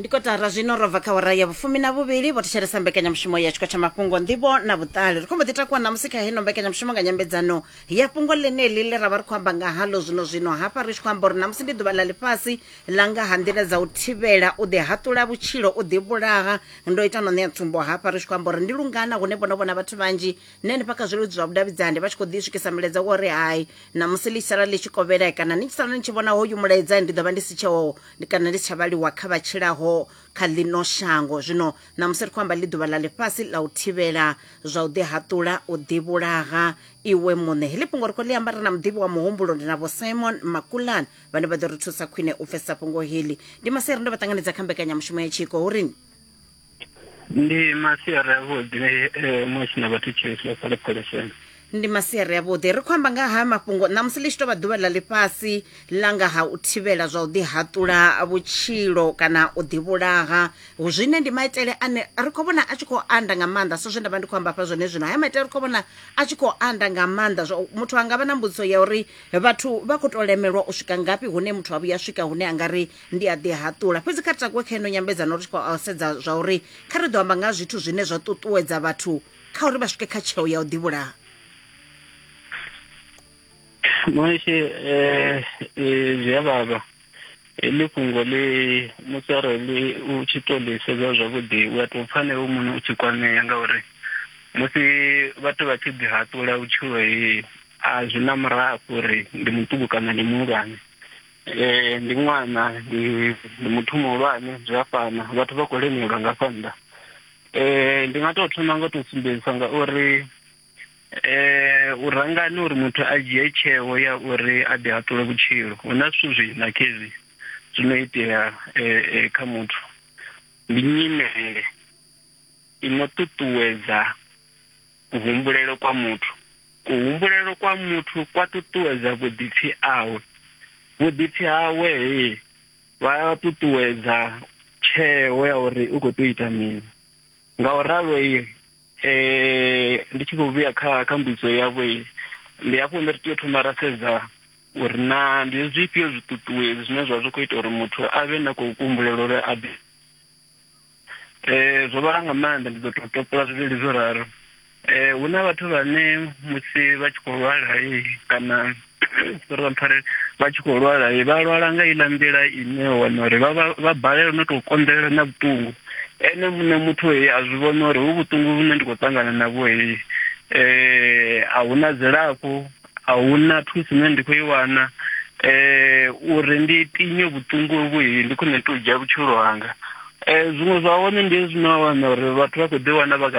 ndi kotara zwino ro bva kha wara ya vhufumi na vhuvhili vho thetshelesa mbekanyamushumo ya tshiko tsha mafhungo nḓivho na vhuṱali ri khombo ḓi takuwa ṋamusi kha heno mbekanyamushumo nga nyambedzano ya fhungo ḽeneḽi ḽe ra vha ri khou amba nga halo zwino zwino hafha ri tshi khou amba uri ṋamusi ndi ḓuvha ḽa ḽifhasi ḽa nga ha nḓila dza u thivhela u ḓihaṱula vhutshilo u ḓivhulaha ndo ita no ṋea tsumbo hafha ri tshi khou amba uri ndi lungana hune vhono vhona vhathu vhanzhi na henefha kha zwileludzi zwa vhudavhidzani vha tshi khou ḓi swikisa milaedza wa uri hai Namusi ḽi tshi sala ḽi tshi kovhela kana ni tshi sala ni tshi vhona hoyu mulaedza, ndi ḓo vha ndi si tsheho kana ndi si tsha vhaliwa kha vha tshilaho kha ḽino shango. Zwino namusi ri khou amba ḽi ḓuvha ḽa ḽifhasi ḽa u thivhela zwa u ḓihaṱula, u ḓivhulaha iwe muṋe. Heḽi fhungo ri khou ḽi amba ri na muḓivhi wa muhumbulo, ndi na Vho Simon Makulane vhane vha ḓo ri thusa khwine u pfesesa fhungo heḽi. Ndi Masiari nda vha ṱanganedza kha mbekanyamushumo ya Tshiko hu ri ni. ndi masiari avhuḓi eh, musi na vhathu tshiliswa fhale pholiseni ndi masiari avhuḓi ri khou amba nga ha mafhungo ṋamusi ḽi tshi tou vha ḓuvha ḽa ḽifhasi ḽa nga ha u thivhela zwa u ḓihaṱula vhutshilo kana u ḓivhulaha Hu- zwine ndi maitele ane ri khou vhona a tshi khou anda nga maanḓa so zwe nda vha ndi khou amba hafha zwone zwino haya maitele ri khou vhona a tshi khou anda nga maanḓa zwa u- muthu a nga vha na mbudziso ya uri vhathu vha khou tou lemelwa u swika ngafhi hune muthu a vhuya a swika hune a nga ri ndi a ḓihaṱula fhedzi kha ri takuwe kha ino nyambedzano ri tshi khou sedza zwa uri kha ri ḓo amba nga zwithu zwine zwa ṱuṱuwedza vhathu kha uri vha swike kha tsheo ya u ḓivhulaha Moshe eh, eh, zwi a vhavha heḽi fhungo ḽi musi arali u tshi to ḽi sedza zwavhuḓi u a tou pfa na iwe muṋe u tshi kwamea ngauri musi vhathu vha tshi ḓihaṱula vhutshilo he a zwi na murafho uri ndi muṱuku kana ndi muhulwane Eh, ndi ṅwana ndi ndi muthu muhulwane zwi a fana vhathu vha khou lemelwa nga fha nnḓa eh ndi nga tou thoma nga u tou sumbedzisa nga uri eh u rangani uri muthu a dzhie tsheo ya uri a ḓi haṱule vhutshilo hu na zwithu zwi na khezwi zwi no itea eh, eh, kha muthu ndi nyimele i no ṱuṱuwedza Kuhumbulele kwa muthu. Kuhumbulele kwa muthu kwa ṱuṱuwedza vhuḓipfi awe. Vhuḓipfi hawe he vha ṱuṱuwedza tsheo ya uri u khou tea u ita mini. Nga u ralo ndi tshi khou vhuya kha kha mbudziso yavho, ndi hafho hune ri tea u thoma ra sedza uri na ndi zwifhio zwiṱuṱuwedzi zwine zwa zwi kho ita uri muthu a vhe na kuhumbulele uri a ḓi. Eh zwo vhala nga maanḓa ndi ḓo to topola zwivhili zwo raro. Eh hu na vhathu vhane musi vha tshi khou lwala kana sorry vha mpfarele vha tshi khou lwala vha lwala nga iḽa nḓila ine wa wana uri vha vha vha balelwa no to konḓelela na vhuṱungu ene muṋe muthu a zwi vhona uri hu vhuṱungu vhune ndi khou ṱangana navho a huna dzilafho. a hu na thuso ine ndi khou i wana um uri ndi tinye vhuṱungu uvhu ndi khwine ndi tou dzhia vhutshilo hanga um zwiṅwe zwa hone ndi hezwi no wana uri vhathu vha khou ḓi wana vha kha